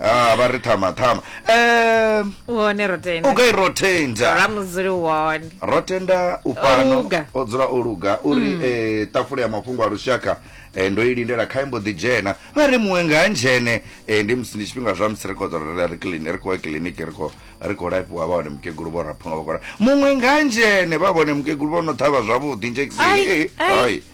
ah vha ri thama thama um wone ro tenda u gai ro tenda ra mudzuli wone ro tenda u fhano luga. o dzula o luga u ri eh, tafula ya mafhungo a lushaka eh, ndo i lindela kha imbo ḓi dzhena vha ri muṅwe nga ndzhene eh, ndi musi ndi tshifhinga zwa musi ri khou ḓo ri- ri clini- ri khou ya kiliniki ri khou- ri khou lafhiwa vha hone mukegulu vho raphuno vha khou ra muṅwe nga ndzhene vha vhone mukegulu vho no ṱhavha zwavhuḓi Ai, njekiseni ai. ai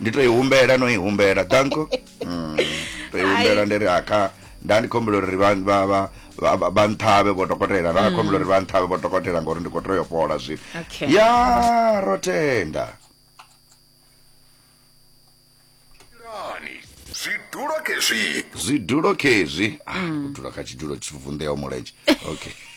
ndi to i humbela no i humbela danko mm. to i humbela ndi ri aka nda ndi khombela uri vha vha vha vha- vha- vha nṱhavhe vho dokotela nda khombela uri vha nṱhavhe vho dokotela ngori ndi khou tea u fhola zwino Okay. ya ro tenda Lani, zwidulo kezwi zwidulo khezwi ah, u dzula kha tshidulo tshi vunḓeaho mulenzhe okay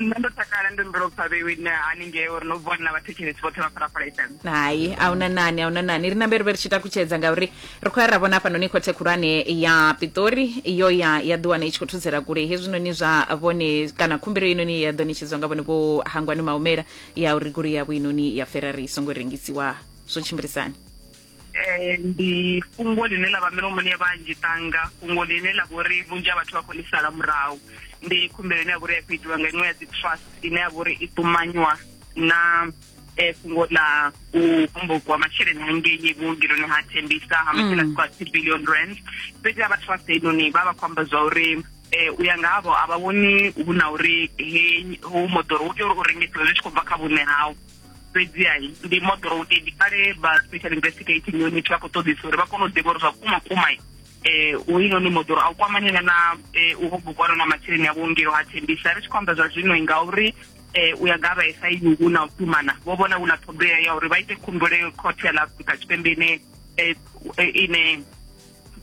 nṋe ndo takala ndo mbela upfa vhewine haningei uri no vuwa ni na vhathetshelesi vhoṱhe vha phalaphala fm hai a huna nani a huna nani ri nambe ri vhe ri tshi takutshedza ngauri ri khou ya ra vhona hafhanoni khothe khulwane ya pitori iyo ya ya ḓiwana i tshi khou thudzela kule hezwinoni zwa vhone kana khumbelo inoni ya ḓo netshedzwa nga vhone vho hangwani maumela ya uri goloi yavho inoni ya ferrari i songo rengisiwa zwo tshimbilisani Eh, ndi fhungo ḽine ḽa vha milomoni ya vhanzhi tanga fhungo ḽine ḽa vhori vhunzhi ha vhathu vha khou ḽi sala murahu ndi khumbelo ine ya vhori ya khou itiwa nga iṅwe ya dzi trust ine ya vhori i ṱumanywa na eh, fhungo ḽa u hombokiwa masheleni hangei vhuongeloni ha thembisa ha masheleni a swika two billion rand fhedzi ha vha trust heinoni vha vha khou amba zwa uri eh u ya nga havho a vha vhoni hu na uri he hu moḓoro u tea uri u rengisiwe zwi tshi khou bva kha vhuṋe hau fhedziha ndi moḓoro u ndi kale vha special investigating unit vha khou ṱoḓisa uri vha kone u ḓivha uri zwa kuma kuma eh u ino ni moḓoro a u kwamanyela na eh, u hobukwana na masheleni a vhuongelo ha thembisa ri tshi khou amba zwa zwino ngauri eh u ya nga vha sa ini hu na u tumana vho vhona hu na ṱhoḓea ya uri vha ite khumbelo khothe ya ḽa afrika tshipembe ine eh, ine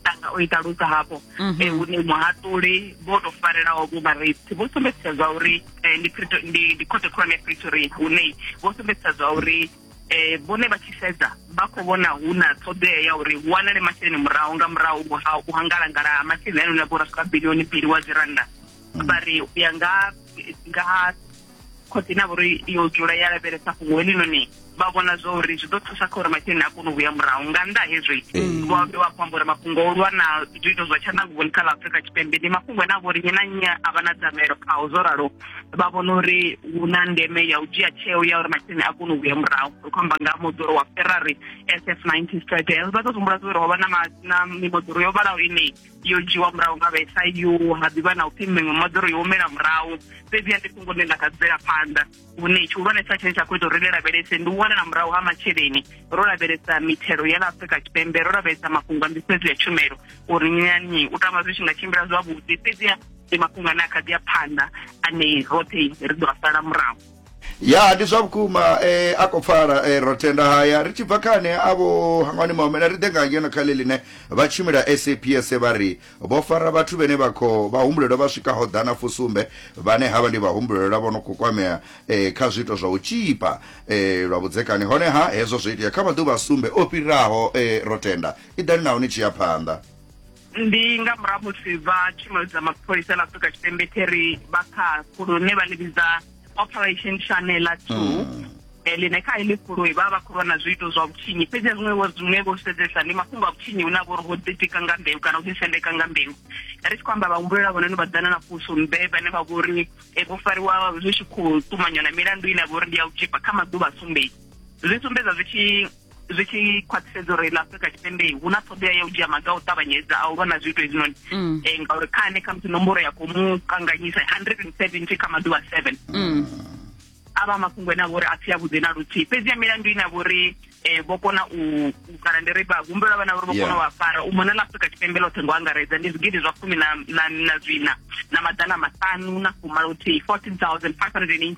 tanga o i ṱalusa hafho mhm. eh, hune muhaṱuli vho to farelaho vho vhareipti vho sumbedzisa zwa uri eh, ndi khothe khulwane ya pretoria hune vho sumbedzisa zwa uri eh vhone vha tshi sedza vha khou vhona hu na ṱhoḓea ya uri hu wanale masheleni murahu nga murahu ha u hangalangala ha masheleni ane na vho rasika bilioni mbili wa dzi rannda vha ri u ya nga nga khotsi na vhori yo dzula ya lavhelesa fhungo helinoni vha vhona zwa uri zwi ḓo thusa kha uri masheleni a kone u vhuya murahu nga nnḓa hezwi vho ambe vha khou amba uri mafhungo o lwa na zwiito zwa tshanḓanguvhoni kha ḽa afurika tshipembe ndi mafhungo ane a vha uri nnyi na nnyi a vha na dzamelo khao zwo ralo vha vhona uri hu na ndeme ya u dzhia tsheo ya uri masheleni a kone u vhuya murahu ri khou amba nga moḓoro wa ferrari sf 90 stradel vha ḓo humbula zwa uri ho vha na mimoḓoro yo vhalaho ine yo dzhiwa murahu nga vha SIU ha ḓivha na upfi miṅwe moḓoro yo humela murahu fhedzi ya ndi fhungo ḽine ḽa kha bvela phanḓa hune tshihulwanesa tshine tsha khou ita uri ri lavhelese ndi u wanela murahu ha masheleni ro lavhelesa mithelo ya ḽa afrika tshipembe ro lavhelesa mafhungo a nḓisedzo ya tshumelo uri nyanyi u tama zwi tshi nga tshimbila zwavhuḓi fhedzi ndi mafhungo ane a kha ḓi ya phanḓa ane roṱhe ri ḓo a sala murahu ya ndi zwa vhukuma eh, a khou pfala eh, ro tenda haya ri tshi bva kha ane avho hangwani maomela ri ḓe nga ngeno kha ḽeḽine vha tshimila saps vha ri vho fara vhathu vhene vha khou vhahumbulelwa vha swikaho ḓana fusumbe vhane havha ndi vhahumbulelwa vho no khou kwamea eh, kha zwiito zwa u tshipa eh, lwa vhudzekani honeha hezwo zwo itea kha maḓuvha a sumbe o fhiraho eh, ro tenda i ḓani naho ni tshi ya phanḓa ndi nga murahu musi vha tshumelo dza mapholisa ḽa afrika tshipembe theri vha kha fulu ne vha ḽi vhidza operation shanela two mm. eh, ḽine kha iḽi fulu vha vha khou lwa na zwiito zwa vhutshinyi fhedzi a zwiṅwe zwiṅwe vho sedzesa ndi mafhungo a vhutshinyi hune a vha uri ho ḓitika nga mbeu kana ho ḓisendeka nga mbeu ri tshi khou amba vhahumbulela vhononi vha ḓana na puso mbe vhane vha vho uri eh, vho fariwa zwi tshi khou ṱumanywa na milandu ine a vha uri ndi ya u tzhipa kha maḓuvha a sumbedzi zwi sumbedza zwi tshi zwi tshi khwaṱhisedza uri ḽa afrika tshipembe hu na ṱhoḓea ya u dzhia maga a u ṱavhanyedza a u lwa na zwiito hezwinoni um mm. eh, ngauri kha ane khamusi nomboro ya khou mu kanganyisa hundred and seventy kha maḓuvha seven mm. a vha mafhungo ene a vha uri a si a vhuḓi na luthihi fhedzi ya milandu ine a vha uri eh vho kona u kana ndi ri ba humbela vhana uri vho kona wa fara u mona la Afrika Tshipembe ḽoṱhe ngo angaredza ndi zwigidi zwa fumi na na na zwina na maḓana maṱanu na fumalothi 14518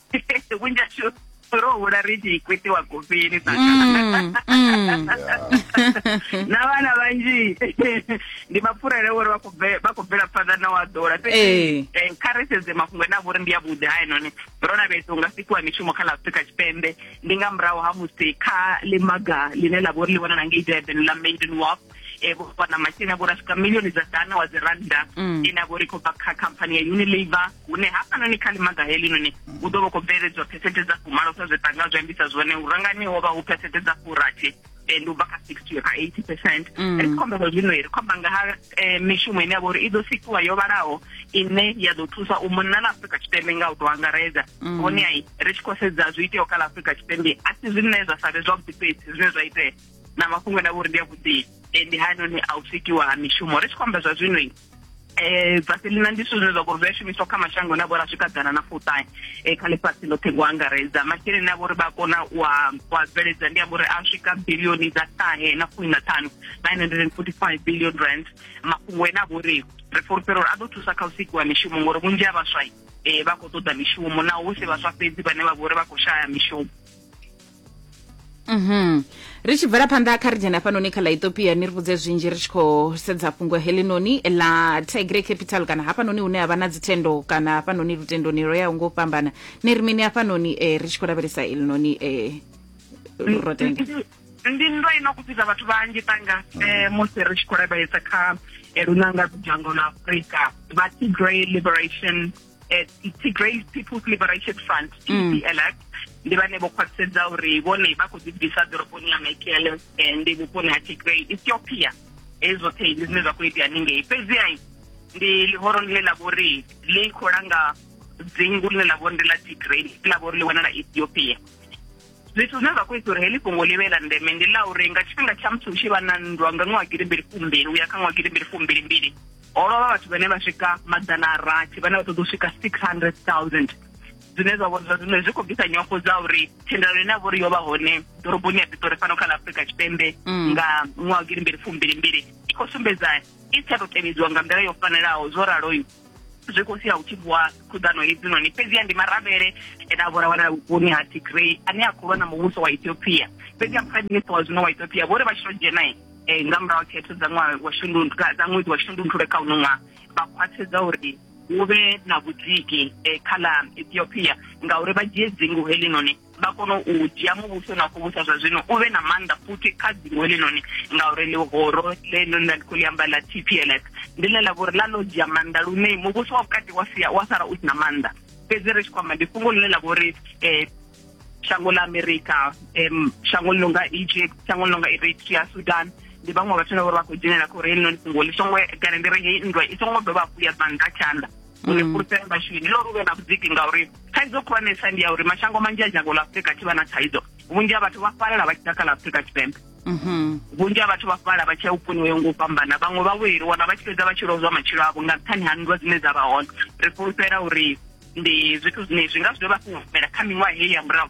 vhunzhi ashu ro hula ri tshi kwitiwa gofini mm, mm. na vhana vhanzhi ndi mapfurele uri vha khou bvela phanḓa na wa ḓola eh. eh, kha ri sedze mafhungo ene a vhori ndi avhuḓi ha enone ro lavhelesa unga sikiwa mishumo kha la afrika tshipembe ndi nga murahu ha musi kha ḽimaga ḽine ḽa vhori ḽi wanala ngei durban ḽa maiden walk e vho fha na masheleni avho ra swika milioni dza dana wa dzi rannda mm. ine avho ri khou bva kha khamphani ya unilabour hune hafhanoni kha limaga helinoni u ḓo vha khou bveledzwa phesente dza fumalo sa zwe tanga zwi ambisa zwone u rangani ho vha hu phesente dza furathi and u bva kha sixty ra eighty percent mm. ri khombelo zwino ri khomba nga ha eh, mishumo ine ya vha uri i ḓo sikiwa yo vhalaho ine ya ḓo thusa u monna na afrika tshipembe nga u tou angaredza mm. vhone ai ri tshi khou sedza zwi iteaho kha ḽa afrika tshipembe a si zwine zwa sa vhe zwavhuḓi fhedzi zwine zwa itea na mafhungo na vhori ndi a vhuḓi eh, ndi hanoni a u sikiwa ha mishumo ri tshi khou amba zwa zwino um eh, vaselina ndi zwithu zwine zwa vhori zwi a shumiswa kha mashango na vhori a swika ḓana na fuṱahe um eh, kha ḽifhasi ḽoṱhe ngo angaredza masheleni a vhori vha kona wa wa bveledza ndi a vhori a swika bilioni dza ṱahe na fumi na ṱhanu nine hundred and forty five billion rand mafhungo ene a vhori ri fulufhela uri a ḓo thusa kha u sikiwa mishumo ngori vhunzhi ha vhaswai um vha khou ṱoḓa mishumo naho hu si vhaswa fhedzi vhane vha vhori vha khou shaya mishumo Mhm. ri tshi bvela phanḓa kha ri dzhena hafhanoni kha ḽa ethiopia ni ri vhudze zwinzhi ri tshi khou sedza fhungo heḽinoni ḽa tigre capital kana hafhanoni hune ha vha na dzithendo kana hafhanoni lutendoni lwo yaho ngo fhambana ni ri mini hafhanoni um ri tshi khou lavhelesa elinoni um eh, rotenda ndi ndo ino kupfisa vhathu vhanzhi tanga um eh, musi ri tshi khou lavhelesa kha lunanga dzhango ḽa afrika vha tigray liberation eh, Tigray People's Liberation Front TPLF mm. ndi vhane vho khwaṱhisedza uri vhone vha khou ḓi bvisa ḓoroboni ya Mekelle eh, ndi vhuponi ha Tigray Ethiopia hezwi zwoṱhe ndi zwine zwa khou itea ningei fhedziha ndi ḽihoro ḽine ḽa vha uri ḽi khou langa dzingu ḽine ḽa vha uri ndi ḽa Tigray ḽa vha uri ḽi wanala Ethiopia zwithu zwine zwa khou isa uri heḽi fhungo ḽi vhe ḽa ndeme ndi ḽa uri nga tshifhinga tsha musi hu tshi vha na nndwa nga ṅwaha girimbili fumbili uya kha ṅwaha girimbili fumbili mbili ho lovha vhathu vhane vha swika maḓana a rathi vhane vha ṱoḓa u swika six hundred thousand zwine zwa vhona zwine zwi khou bvisa nyofho dza uri thendelano ine ya vha uri yo vha hone ḓoroboni ya pitori fhano kha ḽa afurika tshipembe mm. nga ṅwaha girimbili fumbili mbili i khou sumbedza i tsha tou tevhedziwa nga nḓila yo fanelaho zwo raloyo zwi khou sia hu tshi vuwa khuḓano hedzinoni fhedziha ndi maravhele ene a vhora wanala vhuponi ha tigrey ane a khou lwa na muvhuso wa ethiopia fhedziha prime minister wa zwino wa ethiopia vho ri vha tshi to dzhena um eh, nga murahu khetho dza ṅwaha wa shundundu dza ṅwedzi wa shundunthule kha uno ṅwaha vha khwathedza uri hu vhe na vhudziki um kha ḽa ethiopia ngauri vha dzhie dzingu helinoni vha kone u dzhia muvhuso na khou vhusa zwa zwino u vhe na maanḓa futhi kha dzingo heḽinoni ngauri ḽihoro ḽeḽo nda ndi khou ḽi amba ḽa t p l s ndi ḽe ḽa vhori ḽa ḽo dzhia maanḓa lune muvhuso wa vhukati wa sia wa sala u si na maanḓa fhedzi ri tshi khou amba ndi fhungo ḽine ḽa vhori um shango ḽa amerika um shango ḽi nonga egypt shango ḽi nonga eritrea sudan ndi vhaṅwe vhathu na vhori vha khou dzhenelela kha uri heḽinoni fhungo ḽi songo kana ndi ri heyi nndwa i songo dovha hafhu ya bva nṱha tshanḓa uri fhulufhelo vhashumi ndi lori u vhe na vhudziki ngauri thaidzo khulwanesa ndi ya uri mashango manzhi a dzhango ḽa afurika tshi vha na thaidzo vhunzhi ha vhathu vha fhalela vha tshi ḓa kha ḽa afurika tshipembe mhm. vhunzhi ha vhathu vha fhala vha tshi ya vhuponi ho ngo u fhambana vhaṅwe vha vhuyeliwa na vha tshi fhedza vha tshi lozwa matshilo avho nga nṱhani ha nndwa dzine dza vha hone ri fhulufhela uri ndi zwithu zwine zwi nga zwi dovha fhulufhela kha miṅwaha heyi ya murahu